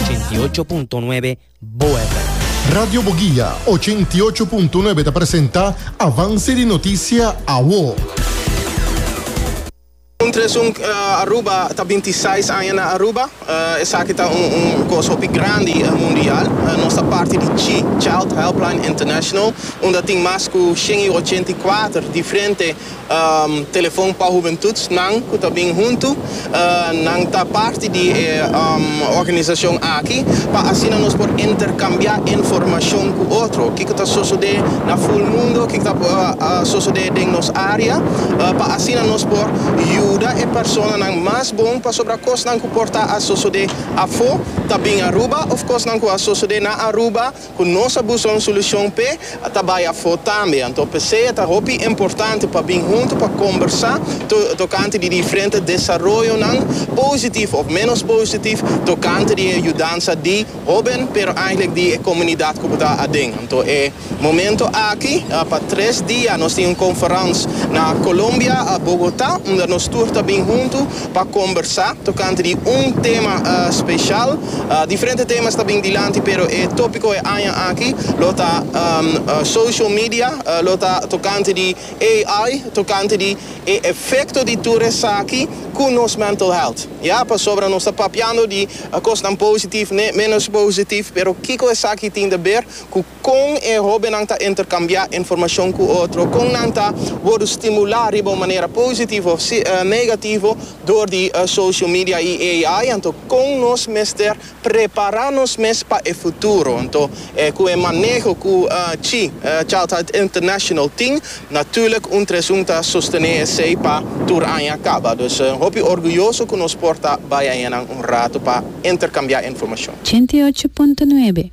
88.9 BoeFm. Radio Boguia 88.9 ta presenta Avance di Noticia Awo. Un tres un Aruba ta binti seis aña na Aruba. Esaki ta un un kos hopi grandi mundial. Nos ta parti di chi, Child Helpline International, unda tin mas ku shen i ochenta i kuater diferente Telefon pa Hubentut nan ku ta bin huntu. Nan ta parti di e organisashon aki pa asina nos por interkambiá informashon ku otro. Kiko ta sosodé na Full Mundo, kiko ta sosodé den nos área, pa asina nos por yuda e personanan mas bon pasobra kosnan ku por ta a sosodé afó ta bin Aruba òf kosnan ku a sosodé na Aruba, Cu nos a busca un solucion p'e, a ta bay afo tambe. Anto p'esey a ta hopi importante pa bin hunto pa combersa tocante di diferente desaroyonan, positif of menos positif, tocante di e yudansa di hoben, pero eigenlijk di e comunidad cu bo ta aden. Anto e momento aki, pa tres dia nos tin un conference na Colombia, Bogota, unda nos tur ta bin hunto. pa kombersá tokante di un tema speshal. Diferente temas ta bin dilanti pero e tópiko e aña aki lo ta Social Media, lo ta tokante di AI, tokante di e efekto di tur esaki ku nos mental health. Ya, pasobra nos ta papiando di kosnan positif, ne ménos positif, pero kiko esaki tin ta ber ku. Kon e hóbennan ta interkambiá informashon ku otro? Kon nan ta wòrdu stimulá riba un manera positivo òf negativo dor di socio media i AI? Anto kon nos mester prepará nos mes pa e futuro? Anto ku e maneho ku chi Childhood International tin? Natùrlik un tres un ta sostené esei pa tur aña kaba. Dus hopi orguyoso ku nos por ta bai añanan un rato pa interkambiá informashon. Ochenta i ocho punto nuebe.